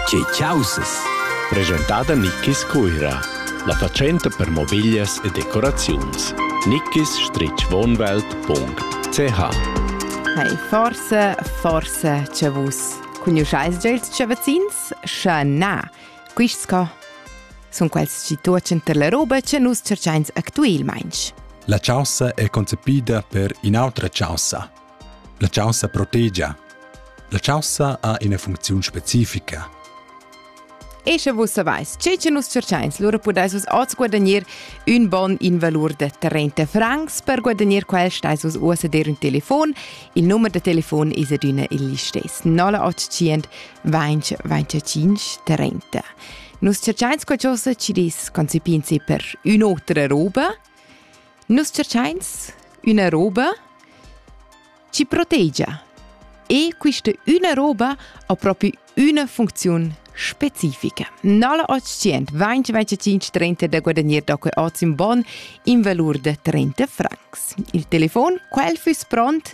Tge chaussas? Presentada Nickis Cuira, la fatschenta per mobiglias e decoraziuns. nickis-wohnwelt.ch Hey, forse, forse c'è vus. Conosceis già ils chavazins? Sche na, quists co? Sun quels chi tuochan ter la roba che nus cerchains actuelmaing. La chaussa è concepida per in'autra chaussa, La chaussa protegia. La chaussa ha ina funcziun specifica. E sche vus savais tge che nus cercains, lura pudais vus oz guadagnir un bon in valur da 30 francs. Per guadagnir quel stais vus uss a dir un telefon. Il numero da telefon es adüna il listess 0800 20 25 30. Nus cercains qualcosa ci dis concipinsi per un'otra roba Nus tscherchains üna roba chi protegia e quista üna roba ha propi üna funcziun specifica. Nalla otschient vainch venticinch trenta da guadagner da que hoz ün bon in valur da trenta francs. Il telefon, quel füss pront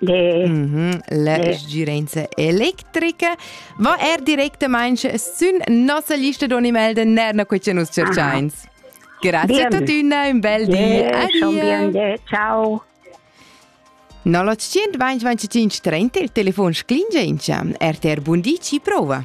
Le, mm -hmm, la le. sgirenza electrica va er directament sün nossa lista d'animals nerna quei che nus cerchains. Grazie a tutti, un bel di. Adieu. Ciao. 0925 30 il telefono sclingentia. RTR Bundi ci prova.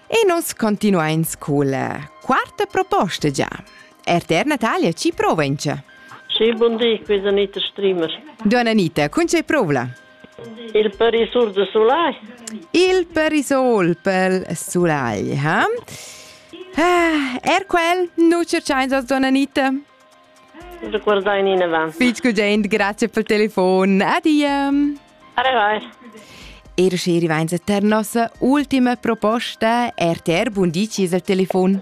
E nus continuains culla quarta proposta già. RTR Natalia ci prova in ce. Sì, buon dì, qui è Anita Streamer. Donna Anita, con c'è prova? Il perisol de Soleil. Il perisol pel Soleil, ha? Ah, er quel nu cerchains os, donna Anita? Ricordai in avanti. Fitch Gugent, grazie pel telefon. Adia. Er schi rivainsa tar nossa ultima proposta RTR Bundici al telefon.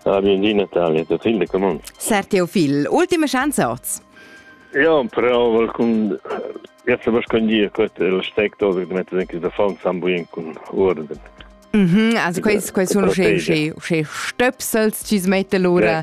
Ah, bienvenue Natalia, der Film der Command. Sar Teofil, ultima chance oz. Ja, prova con Jetzt aber kann ich gut steckt oder mit denke der Fall zusammenbringen con Orden. Mhm, also quels quels sono sche sche sche stöpsels ci smette lura